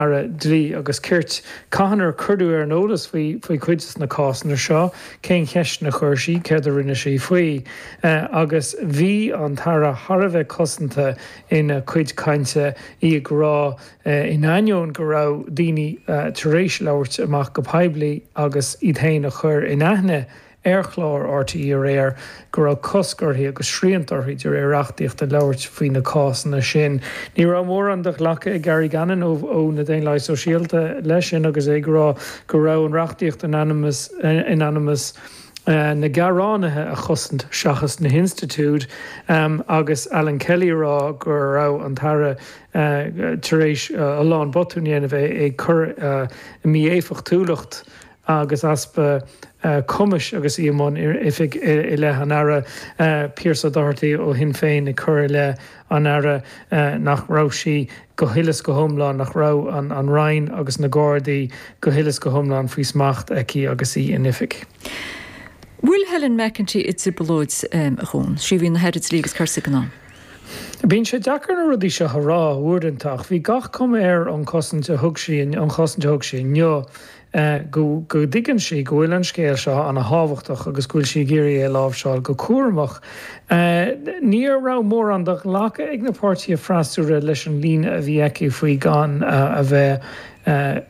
Aire Dlí agus Cirt, cathain ar cuireadh í ar an eolas faoi chuid de na cásanna seo, cén cheisteanna a chuir sí, céard a rinne sí faoi. Agus bhí an tAire thar a bheith cosanta ina cuid cainte, í ag rá, in ainneoin go raibh daoine tar éis labhairt amach go poiblí agus iad féin a chur in aithne, ar chlár RTÉ aréir go raibh cosc uirthi agus srianta uirthi de réir reachtaíochta labhairt faoi na cásanna sin. Ní raibh mórán de ghlacadh ag Gary Gannon ó na Daonlathaigh Shóisialta leis sin agus é ag rá go raibh an reachtaíocht in ainm is in ainm is na gearánaithe a chosaint seachas na hinstitiúid agus Alan Kelly a rá go raibh an tAire tar éis a lán botún a dhéanamh ag cur mí-éifeachtúlacht agus easpa cumais agus í i mbun oifig i leith an Aire Pearse O'Doherty ó Shinn Féin ag cur i leith an Aire nach raibh sí go huile is go hiomlán, nach raibh an Roinn agus na Gardaí go huile is go hiomlán faoi smacht aici agus í in oifig. An bhfuil Helen McEntee i dtrioblóid dhomhain? Sí a bhí ina hAire Dlí agus Cirt ag an am. Bíonn sé deacair na rudaí seo a rá uaireanta ach bhí gach cuma ar an chosaint a thug sí inniu, go dtuigeann sí go bhfuil an scéal seo ana thábhachtach agus go bhfuil sí ag iarraidh é a láimhseáil go cúramach. Ní raibh mórán de ghlacadh ag na páirtithe freasúra leis an líne a bhí aici faoi gan a bheith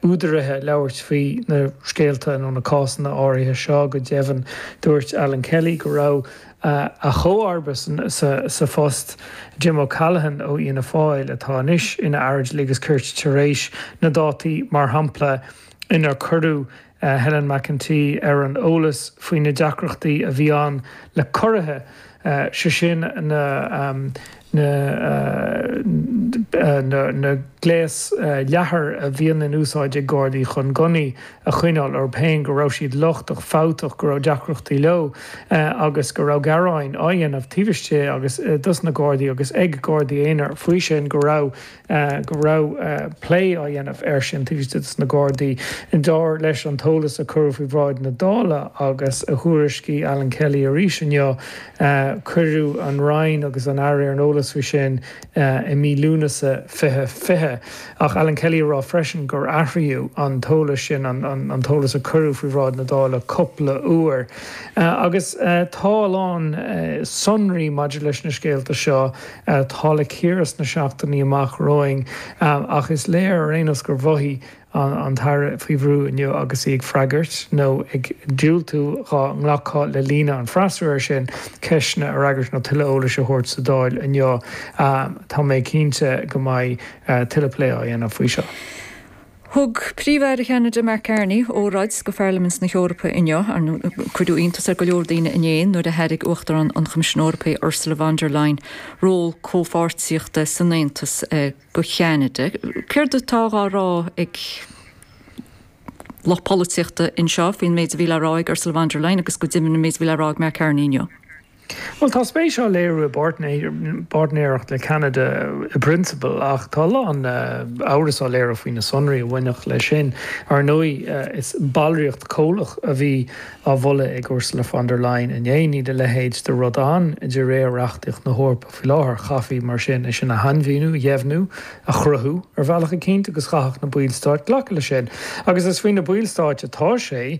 údaraithe labhairt faoi na scéalta nó na cásanna áirithe seo. Go deimhin dúirt Alan Kelly go raibh. a comharba sa phost, Jim O'Callaghan ó Fhianna Fáil, atá anois ina Aire Dlí agus Cirt, tar éis na dátaí, mar shampla, inar cuireadh Helen McEntee ar an eolas faoi na deacrachtaí a bhí ann le curraí, sé sin na. na gléas leathair a bhíonn in úsáid ag Gardaí chun gunnaí a choinneáil orthu féin, go raibh siad lochtach, fabhtach, go raibh deacrachtaí leo agus go raibh gearáin á dhéanamh taobh istigh dos na Gardaí agus ag Gardaí aonair faoi sin, go raibh. go raibh plé á dhéanamh air sin taobh istigh de na Gardaí. Dar leis an t-eolas a cuireadh faoi bhráid na Dála agus a thuairiscigh Alan Kelly arís inniu, cuireadh an Roinn agus an tAire ar an eolas faoi sin i mí Lúnasa 2020. Ach Alan Kelly a rá freisin gur athraíodh an t-eolas sin, an t-eolas a cuireadh faoi bhráid na Dála, cúpla uair. Agus tá a lán sonraí maidir leis na scéalta seo, atá le cíoradh sna seachtainí amach romhainn ach is léir ar aon nós gur mhothaigh an tAire faoi bhrú inniu agus í ag freagairt, nó ag diúltú dhá nglacfaí le líne an freasúra sin, ceisteanna a fhreagairt nó tuilleadh eolais a thabhairt sa Dáil inniu. Tá mé cinnte go mbeidh tuilleadh plé á dhéanamh faoi seo. Thug Príomh-Aire Cheanada Mark Carney óráid go Pharlaimint na hEorpa inniu. Cuireadh iontas ar go leor daoine inné nuair a thairg Uachtarán an Choimisiúin Eorpaigh Ursula von der Leyen ról comhpháirtíochta san Aontas go Ceanada. Céard atá dhá rá ag lucht polaitíochta anseo faoin méid a bhí le rá ag Ursula von der Leyen agus go deimhin an méid a bhí le rá ag Mark Carney inniu? Bhuel, tá spéis á léiriú i bpáirtnéireacht le Ceanada i bprionsabal, ach tá a lán amhras á léiriú faoi na sonraí a bhainfeadh leis sin. Ar ndóigh, is ballraíocht comhlach a bhí á mholadh ag Ursula von der Leyen inné. Níl a leithéid de rud ann de réir reachtaíocht na hEorpa faoi láthair. Chaithfí, mar sin, é sin a shainmhíniú, a dheimhniú, a chruthú ar bhealach eicínt, agus chaithfeadh na ballstáit glacadh leis sin. Agus is faoi na ballstáit atá sé.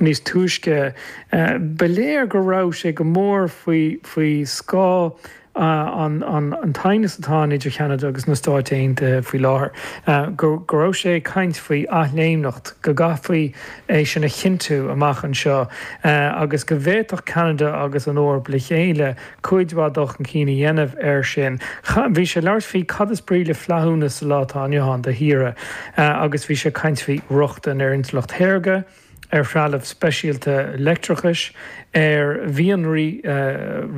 Níos túisce, ba léir go raibh sé go mór faoi scáth an t-aighneas atá ann idir Ceanada agus na Stáit Aontaithe faoi láthair, go raibh sé ag caint faoi athléimneacht, go gcaithfí é sin a chinntiú amach anseo, agus go bhféadfadh Ceanada agus an Eoraip le chéile cuid mhaith dul chun cinn a dhéanamh air sin. Bhí sé ag labhairt faoi cad is brí le flaithiúnas sa lá atá inniu ann do thíortha agus bhí sé ag caint faoi rochtain ar intleacht shaorga, ar threalamh speisialta leictreachais, ar mhianraí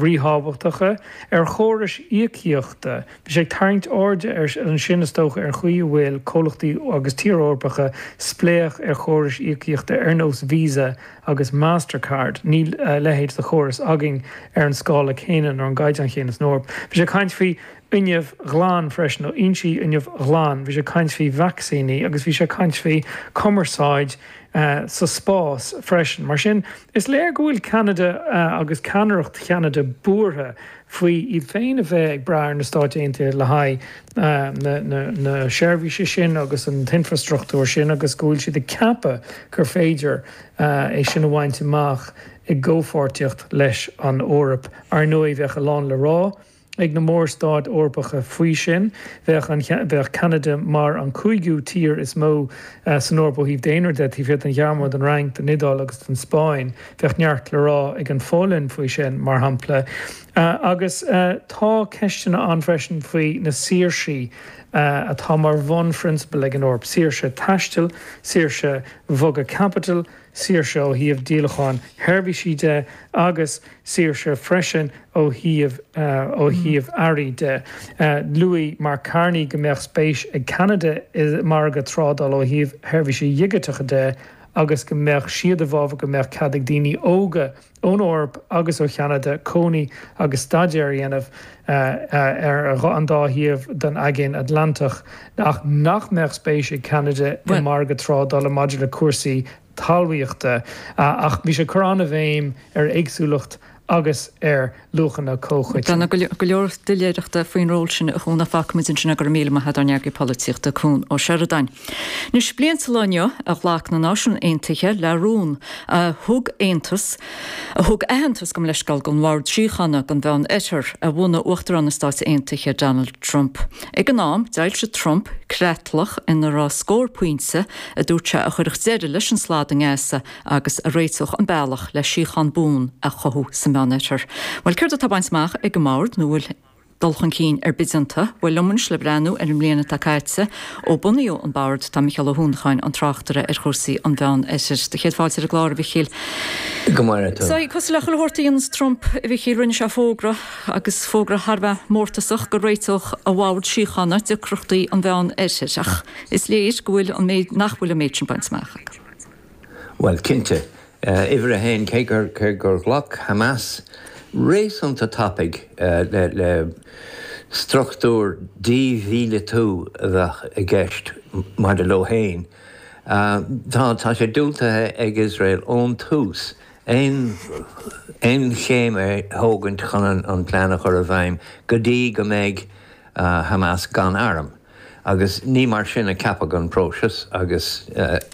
ríthábhachtacha, ar chórais íocaíochta. Bhí sé ag tarraingt airde ansin, is dócha, ar an chaoi a bhfuil comhlachtaí agus tíortha Eorpacha spléach ar chórais íocaíochta ar nós Visa agus Mastercard. Níl a leithéid de chóras againn ar an scála céanna nó ar an gcaighdeán céanna san Eoraip. Bhí sé ag caint faoi fhuinneamh ghlan freisin, ó fhoinsí fuinnimh ghlain, bhí sé ag caint faoi vacsaíní agus bhí sé ag caint faoi chumarsáid sa spás freisin. Mar sin, is léir go bhfuil Ceanada agus ceannaireacht Cheanada buartha faoi iad féin a bheith ag brath ar na Stáit Aontaithe le haghaidh na seirbhíse sin agus an t-infreastruchtúr sin agus go bhfuil siad ag ceapadh gur féidir é sin a bhaint amach i gcomhpháirtíocht leis an Eoraip. Ar ndóigh, bheadh a lán le rá ag na mór-stáit Eorpacha faoi sin. Bheadh Ceanada mar an cúigiú tír is mó san Eoraip ó thaobh daonra de, taobh thiar den Ghearmáin, den Fhrainc, den Iodáil agus den Spáinn. Bheadh neart le rá ag an Pholainn faoi sin, mar shampla. Agus tá ceisteanna ann freisin faoi na saoirsí atá mar bhunphrionsabail ag an Eoraip, saoirse taistil, saoirse bhogadh caipitil, saoirse ó thaobh díolachán seirbhísí de agus saoirse freisin ó thaobh earraí de. Luaigh Mark Carney go mbeadh spéis ag Ceanada i margadh trádála ó thaobh sheirbhísí digiteacha de, agus go mbeadh siad i bhfabhar go mbeadh cead ag daoine óga ón Eoraip agus ó Cheanada cónaí agus staidéar a dhéanamh ar an dá thaobh den Aigéan Atlantach ach nach mbeadh spéis ag Ceanada i margadh trádála maidir le cúrsaí talmhaíochta. Ach bhí sé ag cur an-bhéim ar éagsúlacht agus ar luachanna comhchoiteanna. Tá go leor doiléireachta faoin ról sin a Chuain, fágfaimid ansin é, go raibh míle maith ag ár n-eagraí polaitíochta Cuan Ó Seireadáin. Anois bliain sa lá inniu a ghlac na Náisiúin Aontaithe le rún a thug aontas a thug aitheantas gabh mo leithscéal don Bhord Síochána don Mheánoirthear a bhunaigh Uachtarán na Stát Aontaithe Donald Trump. Ag an am, d'fhoilsigh Trump creatlach ina raibh scór pointe a dúirt sé a chuirfeadh deireadh leis an slad i nGaza, agus a réiteodh an bealach le síochán buan a chothú sa Meánoirthear. Bhuel, céard atá bainte amach ag an mBord, nó bhfuil dul chun cinn ar bith déanta? Bhuel, liom anois le breathnú ar an mbliain atá caite ó bunaíodh an Bord, tá Micheál Ó hUanacháin, an tráchtaire ar chúrsaí an Mheánoirthir, do chéad fáilte ar an gclár, a Mhichíl. Go maire tú. Sea, cosúil le chuile shórt a dhéanas Trump, a Mhichíl, rinne sé fógra, agus fógra thar a bheith mórtasach, go réiteodh a bhord síochána deacrachtaí an Mheánoirthir, ach is léir go bhfuil an méid, nach bhfuil an méid sin bainte amach acu. Bhuel, cinnte, uimhir a haon, cé gur ghlac Hamas réasúnta tapaidh le struchtúr dímhíleatú a bheadh i gceist maidir leo féin, tá sé diúltaithe ag Iosrael ón tús aon chéim a thógaint chun an plean a chur i bhfeidhm go dtí go mbeidh Hamas gan airm, agus ní mar sin a ceapadh an próiseas, agus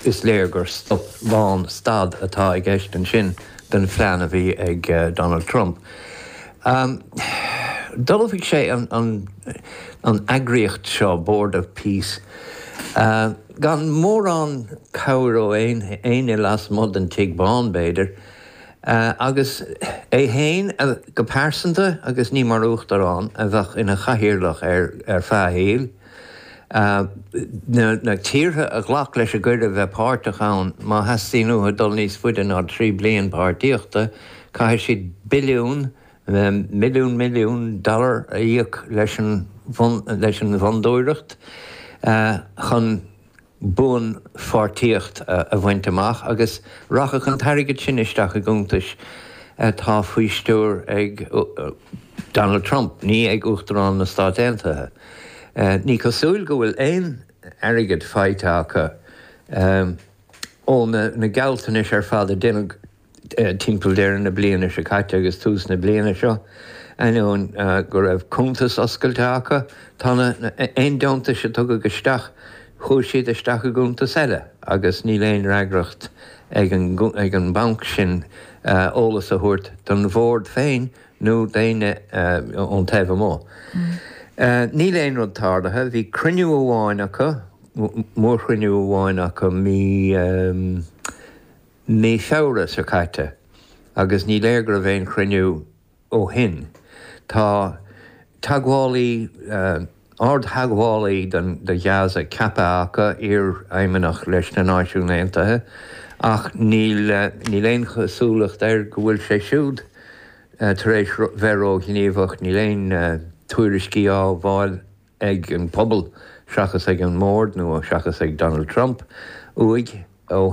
is léir gur stop lánstad atá i gceist ansin don phlean a bhí ag Donald Trump. D'ullmhaigh sé an eagraíocht seo, Board of Peace, gan mórán cabhair ó éinne lasmuigh den Tigh Bhán, b'fhéidir, Agus é féin go pearsanta, agus ní mar Uachtarán, a bheadh ina chathaoirleach air ar feadh a shaoil. Na tíortha a ghlac leis an gcuireadh bheith páirteach ann, má theastaíonn uathu dul níos faide ná trí bliain páirtíochta, caithfidh siad billiún, míle milliún dollar a íoc leis an bhFondúireacht chun. buanpháirtíocht a bhaint amach agus rachadh an t-airgead sin isteach i gcuntais atá faoi stiúir ag Donald Trump, ní ag Uachtarán na Stát Aontaithe. Ní cosúil go bhfuil aon airgead faighte acu ó na gealltanais ar fad a déanadh Timpeall deireadh na bliana seo caite agus tús na bliana seo, ainneoin go raibh cuntais oscailte acu, tá na, aon deontais a tugadh isteach, chuaigh siad isteach i gcuntas eile agus níl aon fhreagracht ag an, ag an banc sin eolas a thabhairt don Bhord féin nó d'éinne ón taobh amuigh. Níl aon rud tarlaithe. Bhí cruinniú amháin acu, mórchruinniú amháin acu mí. mí Feabhra seo caite agus ní léir go raibh aon chruinniú ó shin. Tá teagmhálaí, ardtheagmhálaí do Ghaza ceaptha acu, iarfheidhmeannach leis na Náisiúin Aontaithe, ach níl aon chosúlacht air go bhfuil sé siúd tar éis bheith róghníomhach. Níl aon tuairiscí á bhfáil ag an bpobal, seachas ag an mbord nó seachas ag Donald Trump, uaidh ó shin.